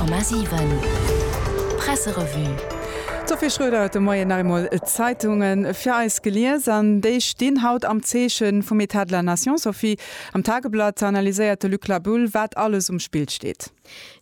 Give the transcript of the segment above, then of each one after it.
100,7 Presserevue. D'Sophie Schroeder huet de Moien nach eemol d'Zeitunge fir eis gelies an déi stinn haut am Zeeche vum État de la Nation. Sophie, am Tageblatt analyséiert de Luc Labulle, wat alles um Spill steet.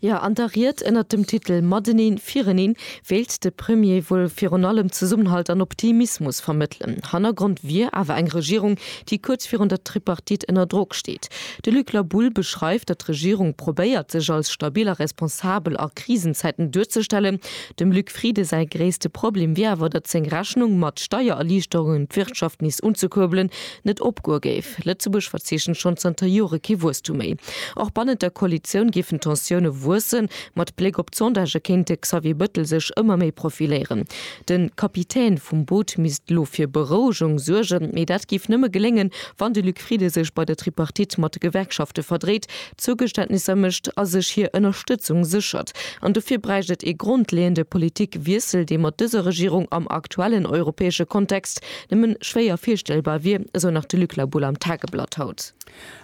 Jo, an der Ried ënnert dem Titel Mateneen, Vireneen wéilt de Premier wuel virun allem Zesummenhalt an Optimismus vermëttelen. Hannergrond wier awer eng Regierung, déi kuerz virun der Tripartite ënner Drock steet. De Luc Laboul beschreift, datt d'Regierung probéiert, sech als stabil a responsabel a Krisenzäiten duerzestellen. Dem Luc Frieden säi gréisste Problem wier awer, datt seng Rechnung, mat Steiererliichterungen d'Wirtschaft nees unzekuerbelen, net opgoe géif. Lëtzebuerg verzeechent schonn zanter Jore kee Wuesstum méi. Och bannent der Koalitioun géifen d'Tensioune wuessen. Mat Bléck op d'Sondagë kéint de Xavier Bëttel sech ëmmer méi profiléieren. De Kapitän vum Boot misst lo fir Berouegung suergen, mee dat géif nëmme geléngen, wann de Luc Frieden sech bei der Tripartite mat de Gewerkschafte verdréit, Zougeständnisser mécht a sech hir Ënnerstëtzung séchert. An dofir bräicht et ee grondleeënde Politikwiessel, dee mat dëser Regierung am aktuellen europäesche Kontext nëmme schwéier virstellbar wier, esou nach de Luc La Boulle am Tageblatt haut.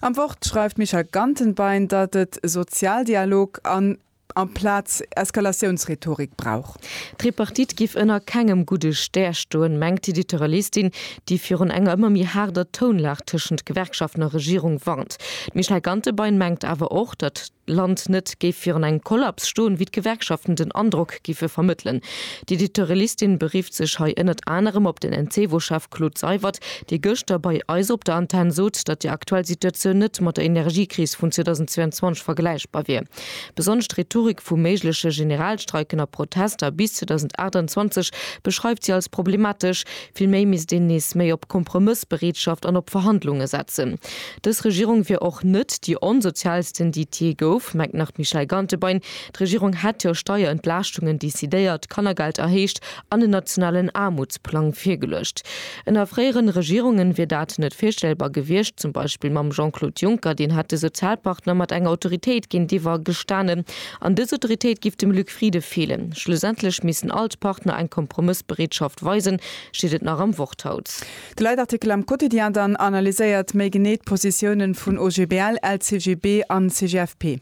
Am Wort schreift d'Michèle Gantenbein, datt et Sozialdialog an amplaz Eskalatiounsrhetorik brauch. D'Tripartite giff ënner kengem gudde Stär stoen, mengt d'Editeuralistin, déi virun enger ëmmer méi haarder Tounlag tëschent Gewerkschaften a Regierung warnt. D'Michèle Gantebein mengt awer och, datt d'Land net géif virun engem Kollaps stoen, wéi d'Gewerkschaften den Androck giffe vermëttelen. D'Editeuralistin berifft sech hei ënnert anerem op den Encevo-Chef Claude Seywert, dee gëschter bei eis op der Antenn sot, datt déi aktuell Situatioun net mat der Energiekris vun 2022 vergläichbar wier. Besonnesch d'Rhetorik vu méigleche Generalstreiken a Protester bis 2028 beschreift si als problematesch. Vill méi misst een nees méi op Kompromëssbereetschaft an op Verhandlunge setzen. Dës Regierung wier och net déi onsozialsten, déi et jee gouf, mengt nach d'Michèle Gantebein. D'Regierung hätt jo Steierentlaaschtungen decidéiert, d'Kannergeld erhéicht an en nationalen Aarmutsplang virgeluecht. Ënner fréieren Regierungen wier dat net virstellbar gewiescht, zum Beispill mam Jean-Claude Juncker, deen hätt de Sozialpartner mat enger Autoritéit géintiwwer gestanen. An dës Autoritéit giff dem Luc Frieden feelen. Schlussendlech missten all d'Partner eng Kompromëssbereetschaft weisen, steet et nach am Wort haut. De Leitartikel am Quotidien dann analyséiert méi genee d'Positiounen vun OGBL, LCGB an CGFP.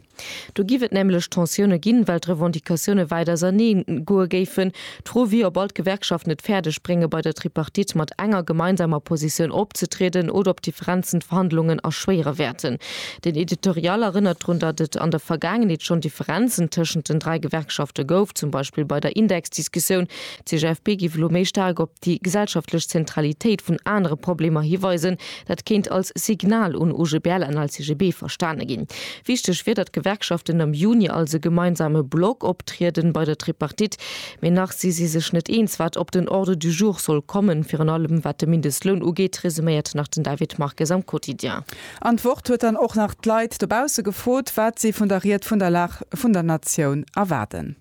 Do giff et nämlech Tensioune ginn, well d'Revendicatioune wäit ausernee goe géifen. D'Fro wier, ob all d'Gewerkschaften et fäerdeg brénge bei der Tripartite mat enger gemeinsamer Positioun opzetrieden oder ob Differenzen d'Verhandlungen erschwéiere wäerten. Den Editorial erënnert drun, datt et an der Vergaangenheet schonn Differenzen tëschent den dräi Gewerkschafte gouf, zum Beispill bei der Indexdiskussioun. D'CGFP giff elo méi staark op. déi gesellschaftlech Zentralitéit vun anere Problemer hiweisen, dat kéint als Signal un OGBL an LCGB verstane ginn. Wichteg wier, datt d'Gewerkschaften am Juni als e gemeinsame Block optrieden bei der Tripartite, mee nach si si sech net eens, wat op den Ordre du jour soll kommen, virun allem wat de Mindestloun ugeet, resuméiert nach den David Marques am Quotidien. An d'Wort huet dann och nach d'Leit dobausse gefrot, wat si vun der Ried vun der Lag vun der Natioun erwaarden.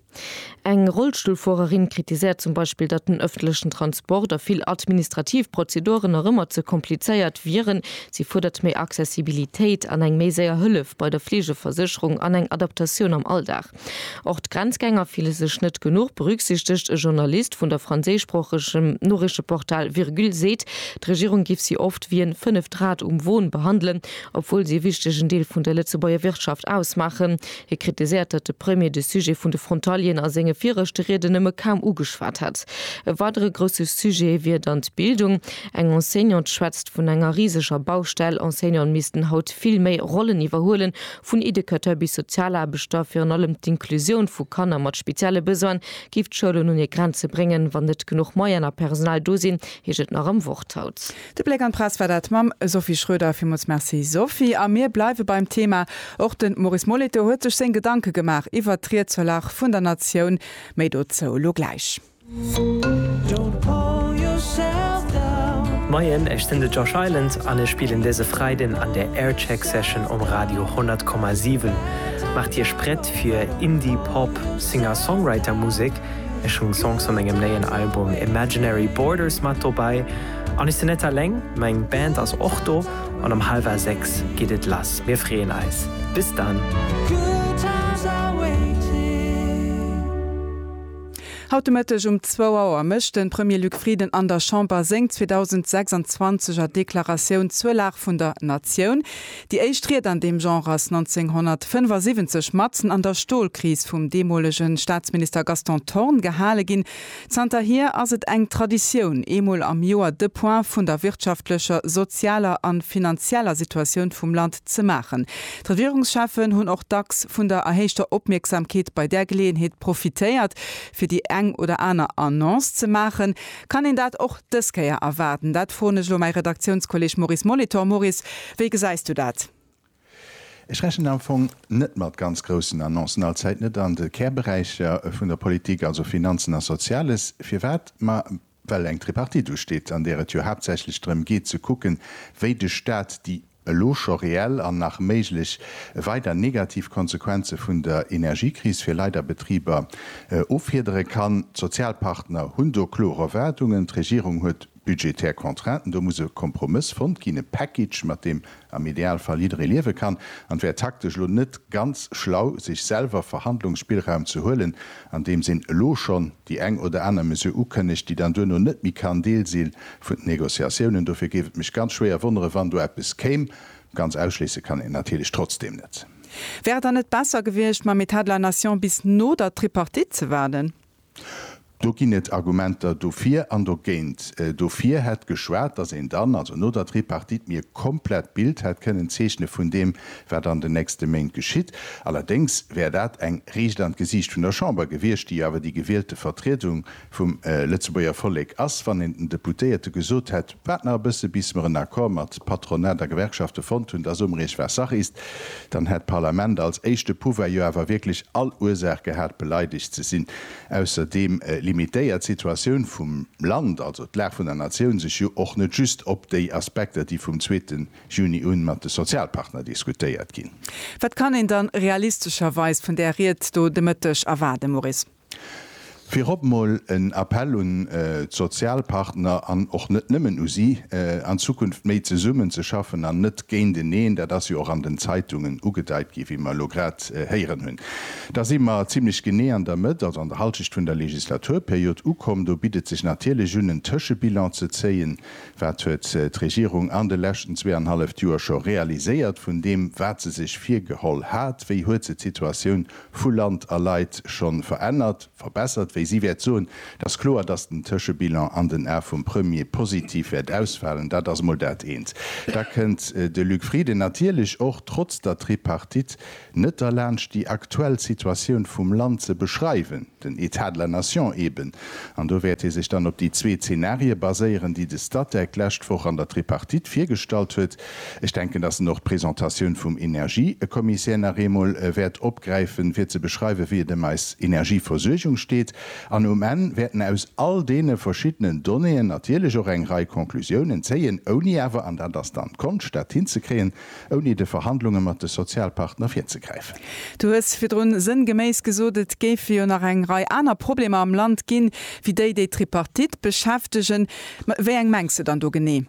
Eng Rollstullfuererin kritiséiert zum Beispill, datt den ëffentlechen Transport a vill administrativ Prozeduren nach ëmmer ze komplizéiert wieren. Si fuerdert méi Accessibilitéit an eng méi séier Hëllef bei der Fleegeversécherung an eng Adaptatioun am Alldag. Och d'Grenzgänger fille sech net genuch berücksichtegt. E Journalist vun der franséischsproochegem Noriichteportal Virgule seet, d'Regierung giff si oft wéi en fënneft Rad um Won behandelen, obwuel si e wichtegen Deel vun der Lëtzebuerger Wirtschaft ausmaachen. Hie kritiséiert, datt de Premier de Sujet vun de Frontalieren a senge viregte Rieden nëmme kaum ugeschwat hätt. E weidere grousse Sujet wier dann d'Bildung. Eng Enseignante schwätzt vun enger riseger Baustell. Enseignanten missten haut vill méi Rollen iwwerhuelen, vun Educateur bis Sozialaarbechter. Virun allem d'Inclusioun vu Kanner mat spezielle Besoine géif d'Schoulen un hir Grenze bréngen, wann net genuch Moyen a Personal do sinn, heescht et nach am Worthaut. De Bléck an d'Press war dat mam Sophie Schroeder. Villmools Merci Sophie. A mir bleiwe beim Thema. Och de Maurice Moleto huet sech seng Gedanke gemaach iwwert d'Ried zur Lag vun der Natioun. Méi dozou lo gläich. Moien, ech sinn de Josh Island an ech spillen dëse Freiden an der Aircheck Session um Radio 100,7. Maacht Iech prett fir Indie Pop Singer-Songwriter Musek. Ech hunn Songs vu mengem néien Album Imaginary Borders mat dobäi. An ech sinn net alleng, meng Band ass och do an um halwer 6 geet et lass. Mir freeën eis. Bis dann! Haut de Mëtteg um zwou Auer mécht de Premier Luc Frieden an der Chamber seng 2026 er Deklaratioun zur Lag vun der Natioun. Déi éischt Ried an deem Genre ass 1975 matzen an der Stolkris vum deemolege Staatsminister Gaston Thorn gehale ginn. Zanterhier ass et eng Traditioun, eemol am Joer de Point vun der wirtschaftlecher, sozialer an finanzieller Situatioun vum Land ze maachen. D'Regierungscheffen hunn och dacks vun der erhéichter Opmierksamkeet bei där Geleeënheet profitéiert, fir déi eng oder aner Annonce ze maachen. Kann een dat och dës Kéier erwaarden? Dat froen ech elo mäi Redaktiounskolleg Maurice Molitor. Maurice, wéi gesäis du dat? Ech rechnen am Fong net mat ganz groussen Annoncen, allzäit net an de Kärberäicher vun der Politik, also Finanzen a Soziales. Firwat? Ma well eng Tripartite usteet, an där et jo haaptsächlech drëm geet ze kucken, wéi de Staat déi elo scho reell an nach méiglech weider negativ Konsequenze vun der Energiekris fir Leit a Betriber offiedere kann. D'Sozialpartner hunn do klor Erwaardungen. D'Regierung huet Budgetär Contrainten, do muss e Kompromëss fonnt ginn, e Package, mat deem am Idealfall jidderee liewe kann. An et wär taktesch elo net ganz schlau, sech selwer Verhandlungsspillraum ze huelen, andeems een elo schonn déi eng oder aner Mesure ukënnegt, déi dann duerno net méi kann Deel si vun den Négociatiounen. Dofir géif et mech ganz schwéier wonneren, wann do eppes kéim. Ganz ausschléisse kann een et natierlech trotzdeem net. Wär et dann net besser gewiescht, mam État de la Nation bis no der Tripartite ze waarden? Do ginn et Argumenter dofir an dogéint. Dofir hätt geschwat, datt een dann, also no der Tripartite, mir e komplett Bild hätt kënnen zeechne vun deem, wat an den nächste Méint geschitt. Allerdéngs wär dat eng Riicht an d'Gesiicht vun der Chamber gewiescht, déi jo awer déi gewielte Vertriedung vum Lëtzebuerger Vollek ass. Wann een den Deputéierte gesot hätt, Waart nach e bësse bis mer en Accord mat Patronat a Gewerkschafte fonnt hunn, dass Umreech war Sache ist, dann hätt d'Parlament als éischte Pouvoir jo awer wierklech all Ursaach gehat beleidegt ze sinn. Ausserdeem limitéiert d'Situatioun vum Land, also d'Lag vun der Natioun, sech jo och net just op déi Aspekter, déi vum zweete Juni un mat de Sozialpartner diskutéiert ginn. Wat kann een dann realistescherweis vun där Ried do de Mëtteg erwaarden, Maurice? Virop mol en Appell un d'Sozialpartner an och net nëmmen u si, an Zukunft méi zesummen ze schaffen an net géinteneen. Dat ass jo och an den Zeitungen ugedeit ginn, wéi mer elo grad héieren hunn. Da si mer zimlech genee an der Mëtt, also an der Hallschecht vun der Legislaturperiod ukomm. Do bitt et sech natierlech un, en Tëschebilan ze zéien. Wat huet d'Regierung an de leschten zweeanhalleft Joer scho realiséiert vun deem, wat se sech virgeholl hat? Wéi huet se d'Situatioun vu Land a Leit scho verännert, verbessert. Wéi si wäert soen, Et ass kloer, datt den Tëschebilan an den Ae vum Premier positiv wäert ausfalen. Dat ass emol dat eent. Da kënnt de Luc Frieden natierlech och trotz der Tripartite net derlaanscht, déi aktuell Situatioun vum Land ze beschreiwen. den État de la nation eben, an do wäert ee sech dann op déi zwee Zenarie baséieren, déi de Statec d'lescht Woch an der Tripartite virgestallt huet. Ech denken, dass en och d'Presentatioun vum Energiekommissär nach eemol wäert opgräifen, fir ze beschreiwen, wéi et ëm eis Energieversuergung steet. An um Enn wäert en aus all deene verschiddenen Donnéeën natierlech och eng Rei Conclusiounen zéien, ouni awer, an dat ass dann d'Konscht, dat hinzekréien, ouni de Verhandlunge mat de Sozialpartner virzegräifen. Du hues virdrun sënngeméiss gesot, et géife jo nach eng Rei aner Problemer am Land ginn, wéi déi, déi d'Tripartite beschäftegen. Mä wéi eng mengs de dann do genee?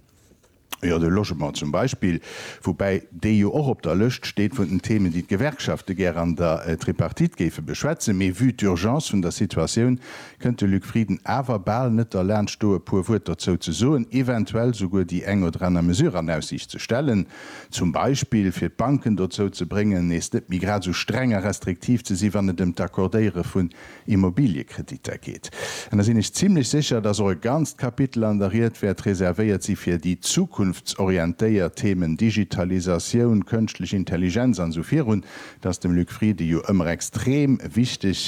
Jo, de Logement zum Beispill, woubäi dee jo och op der Lëscht steet vun den Themen, déi d'Gewerkschafte gär an der Tripartite géife beschwätzen. Mee vue d'Urgence vun der Situatioun kënnt de Luc Frieden awer bal net derlaanscht do e puer Wuert dozou ze soen, eventuell souguer déi eng oder aner Mesure an Aussiicht ze stellen, zum Beispill fir d'Banken dozou ze bréngen nees net méi grad esou streng a restriktiv ze si wann et ëm d'Accordéiere vun Immobiliëkreditter geet. An da sinn ech zimlech sécher, datt och e ganzt Kapitel an der Ried wäert reservéiert si fir déi zukunftsorientéiert Themen, Digitalisatioun, kënschtlech Intelligenz an esou virun, Et ass dem Luc Frieden jo ëmmer extrem wichteg,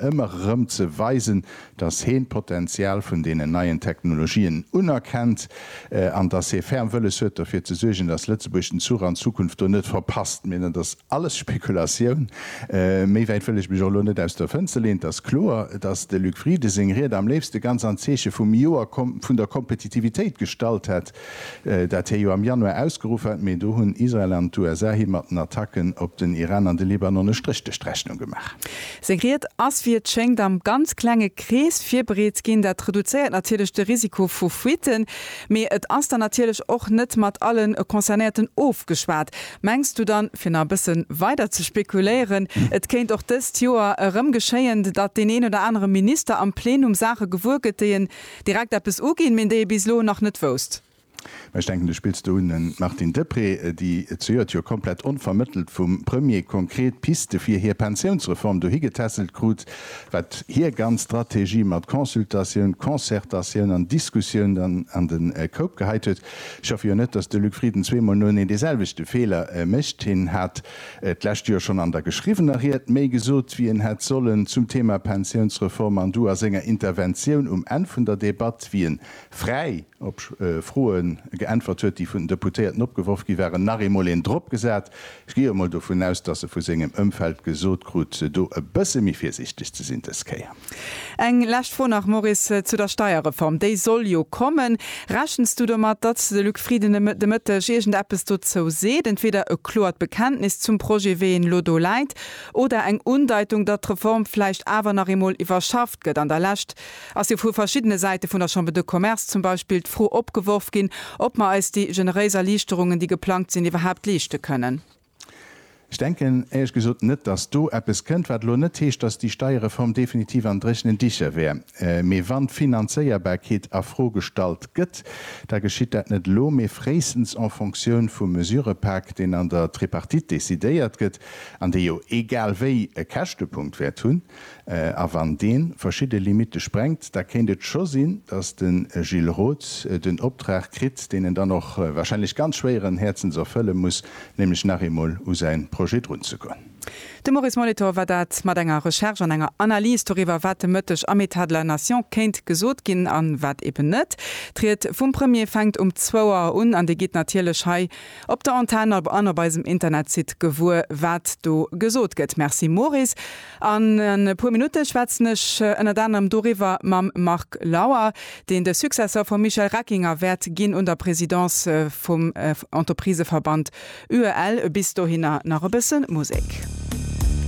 ëmmer erëm ze weisen, dass heen d'Potenzial vun deenen neien Technologien unerkennt an dass hee ferm wëlles huet, derfir ze suergen, dass Lëtzebuerg den Zuch an d'Zukunft do net verpasst. Mee dat ass alles Spekulatioun. Méi wäit wëll ech mech och elo net aus der Fënster leen. Et ass kloer, dass de Luc Frieden seng Ried am léifste ganz am Zeeche vum Joer vun der Kompetitivitéit gestallt hätt. Dat hir jo am Januar ausgeruff hat, mee do hunn Israel an d'USA him mat den Attacken op den Iran an de Libanon e Stréch duerch d'Rechnung gemaach. Seng Ried ass, wéi et schéngt, am ganz klenge Krees virbereet ginn. Dat reduzéiert natierlech de Risiko vu Fuitten, mee et ass dann natierlech och net mat alle Concernéierten ofgeschwat. Mengs du dann, fir nach e bësse weider ze spekuléieren, et kéint och dëst Joer erëm geschéien, datt deen een oder anere Minister am Plenum Saache gewuer gëtt, déi en Direkt eppes uginn, méint déi ee bis elo nach net wousst. Mä ech denken, du spills do un den Martine Deprez, déi zejoert jo komplett onvermëttelt vum Premier konkret Piste fir hir Pensiounsreform dohi getässelt krut, wat hir ganz Strategie mat Consultatioun, Concertatioun an Diskussioun dann an de Koup geheit huet. Ech hoffe jo net, dass de Luc Frieden zweemol noeneen deeselwechte Feeler mécht. Hien hat D'lescht Joer schonn an der geschriwwener Ried méi gesot, wéi en hätt sollen, zum Thema Pensiounsreform an du a senger Interventioun um Enn vun der Debatt, wéi en fräi op Froe geäntwert huet, déi vun den Deputéierten opgeworf gi waren, nach eemol een dropgesat. Ech gi jo emol dovun aus, dass e vu sengem Ëmfeld gesot krut, do e bësse méi virsiichteg ze sinn dës Kéier. Eng lescht Fro nach, Maurice, zu der Steierreform. Déi soll jo kommen. Rechens du domat, datt de Luc Frieden de Mëtteg iergend eppes dozou seet, entweeder e kloert Bekenntnis zum Projet, wéi en elo do läit, oder eng Undeitung, datt d'Reform vläicht awer nach eemol iwwerschafft gëtt? An der Lescht ass jo vu verschiddene Säite vun der Chambre de Commerce zum Beispill d'Fro opgeworf ginn, ob mer eis déi generéis Erliichterungen, déi geplangt sinn, iwwerhaapt leeschte kënnen. Ech denken éierlech gesot net, dass do eppes kënnt, wat elo net heescht, dass déi Steierreform definitiv an dréchenen Dicher wär. Mee wann d'Finanzéierbarkeet a Fro gestallt gëtt, da geschitt dat net elo, mee fréistens en Fonctioun vum Mesurëpak, deen an der Tripartite decidéiert gëtt an dee jo egal wéi e Käschtepunkt wäert hunn. A wann dee verschidde Limitte sprengt, da kéint et scho sinn, datt de Gilles Roth den Optrag kritt, deen en dann och wahrscheinlech ganz schwéieren Häerzens erfëlle muss, nämlech nach eemol u säi Projet drun ze goen. De Maurice Molitor war dat mat enger Recherche an enger Analys doriwwer, wat de Mëtteg am État de la Nation kéint gesot ginn a wat eben net. D'Ried vum Premier fänkt um zwou Auer un an déi geet natierlech hei Op der Antenn ab an op eisem Internetsite gewuer wat do gesot gëtt. Merci Maurice. An e puer Minutte schwätzen ech ënnert anerem doriwwer mam Marc Lauer, deen de Successor vum Michel Reckinger wäert ginn un der Presidence vum Entrepriseverband UEL. Bis dohinner nach e bësse Musek.